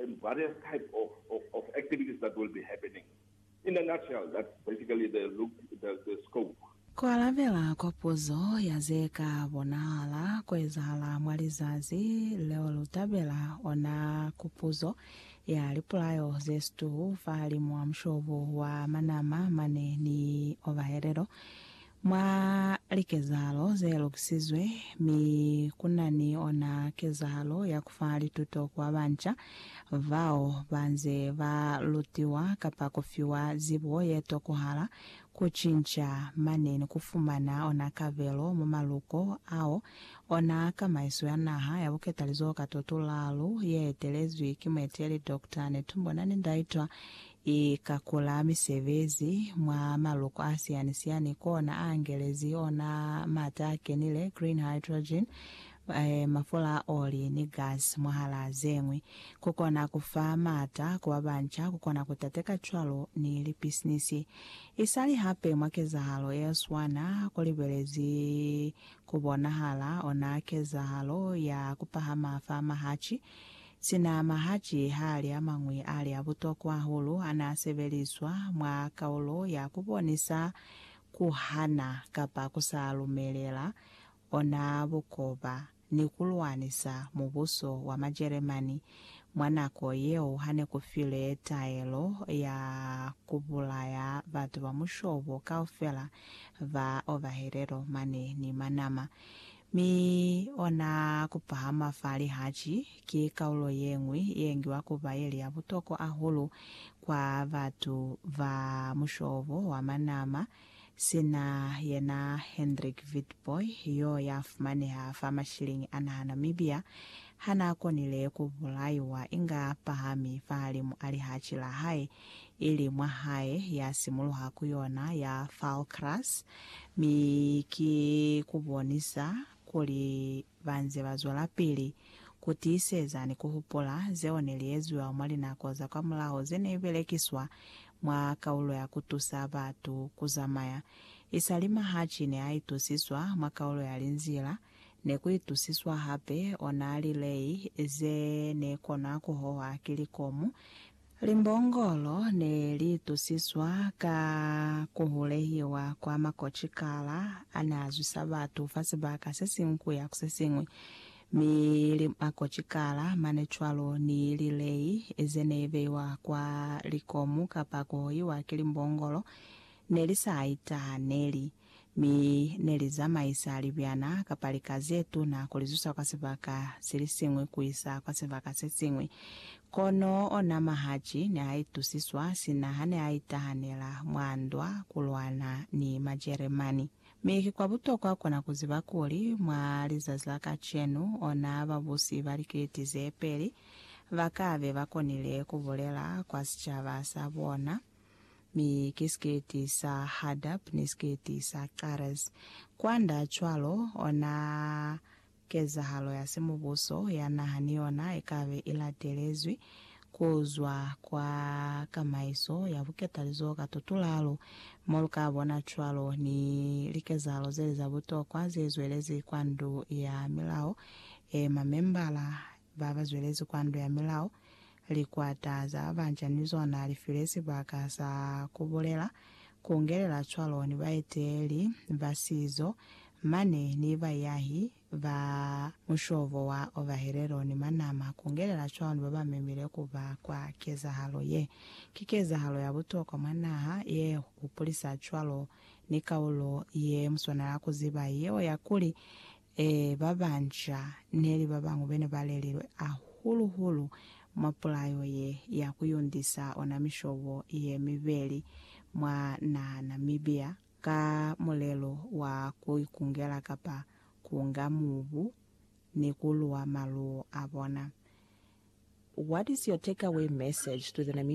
and various type of of of activities that will be happening. In a nutshell that's basically the look the the scope. Ku alabela kwa puzo ya ze ka bonahala ku ezahala mwa lizazi leo lu tabela ona ku puzo ya lipulayo ze situ fahalimwa mushobo wa manama mane ni ovahelelo Mwa likezahalo ze lukisizwe, mi ku na ni ona kezahalo ya ku fa lituto ku ba banca bao ba nze ba lutiwa kapa ku fiwa zibo ye tokohala, ku cinca mane ni ku fumana ona kabelo mwa maluko ao ona kamaiso ya naha ya buketalizoho ka totulalu ye etelezwi ki mueteli Doctor Netumbo Nandi-Ndaitwah I kakula misebezi mwa maloko a siyani-siyani kona a angelezi ona mata a kenile, green hydrogen, mafula a oli, ni gas, mwahalaa ze ñwi. Ku kona ku fa mata ku ba banca ku kona ku tateka cwalo ni lipisinisi. I sali hape mwa kezahalo ye swana ku libelezi ku bonahala ona kezahalo ya ku pahama fa mahaci Sina mahaci hali amañwi ali abutokwa hahulu anasebeliswa mwa kaulo ya kubonisa kuhana kapa kusa lumelela ona bukoba ni kulwanisa mubuso wa Majeremani mwa nako yeo hane kufile taelo ya kubulaya batu ba mushobo kaufela ba Ovahelelo mane ni Manama Mi ona kupahama fa lihaci ki kaulo yeñwi yeengiwa kuba yeli ya butokwa ahulu kwa batu ba mushobo wa manama, sina yena Hendrik Witbooi yo yafumaneha fa mashilingi a naha Namibia hanaakonile kubulaiwa inga pahami fahalimu a lihaci lahae ili mwa hae ya simuluha ku yona ya Falkras, mi ki ku bonisa kuli ba nze ba zwelapili ku tiiseza ni ku hupula zeo ne li eziwa mwa linako za kwamulaho ze ne belekiswa mwa kaulo ya ku tusa batu ku zamaya. Isali Mahachi ne a itusiswa mwa kaulo ya linzila, ne ku itusiswa hape ona lilei ze ne konwa ku hohwa ki likomu, Limbongolo ne li tusiswa ka ku hulehiwa kwa makocikala a n'a zwisa batu fa sibaka se siñwi ku ya ku se siñwi, mi makocikala mane cwalo ni lilei ze ne beiwa kwa likomu kapa ku hohiwa ki limbongolo ne li sa itahaneli. mi ne li zamaisa libyana kapa lika ze tuna ku li zusa kwa sibaka se li siñwi ku isa kwa sibaka se siñwi. Kono ona Mahachi ne a itusiswa sina ha ne a itahanela mwa ndwa ku lwana ni Majeremani. Mi ki kwa butokwa ku na ku ziba kuli, mwa lizazi la kacenu, ona babusi ba likiliti ze peli ba ka be ba konile ku bulela kwa sicaba sa bona, mi ki siketi sa Hadab ni siketi sa Carez. Kwanda cwalo, ona kezahalo ya simubuso ya naha ni yona ikabe ilatelezwi kuzwa kwa kamaiso ya buketalizoho ka tutulalo, mo lukabona cwalo ni likezahalo zeli za butokwa zezwelezi kwa Ndu ya Milao ye Mamembala ba ba zwelezi kwa Ndo ya Milao, likwata za banca ni zona li file sibaka sa ku bulela, ku ngelela cwalo ni baeteleli ba sizo mane ni baiahi ba mushobo wa Ovaherero ni Manama, ku ngelela cwalo ni ba ba memile ku ba kwa kezahalo ye. Ki kezahalo ya butokwa mwa naha ye hupulisa cwalo ni kaulo ye muswanela ku ziba yeo ya kuli Ee, ba banca neli ba bañwi bene ba lelilwe ahulu-hulu mwa pulayo ye ya ku yundisa ona mishobo ye mibeli mwa naha Namibia ka mulelo wa ku ikungela kapa kunga mubu ni ku luwa maluwo a bona. What is your take away message to the Namibian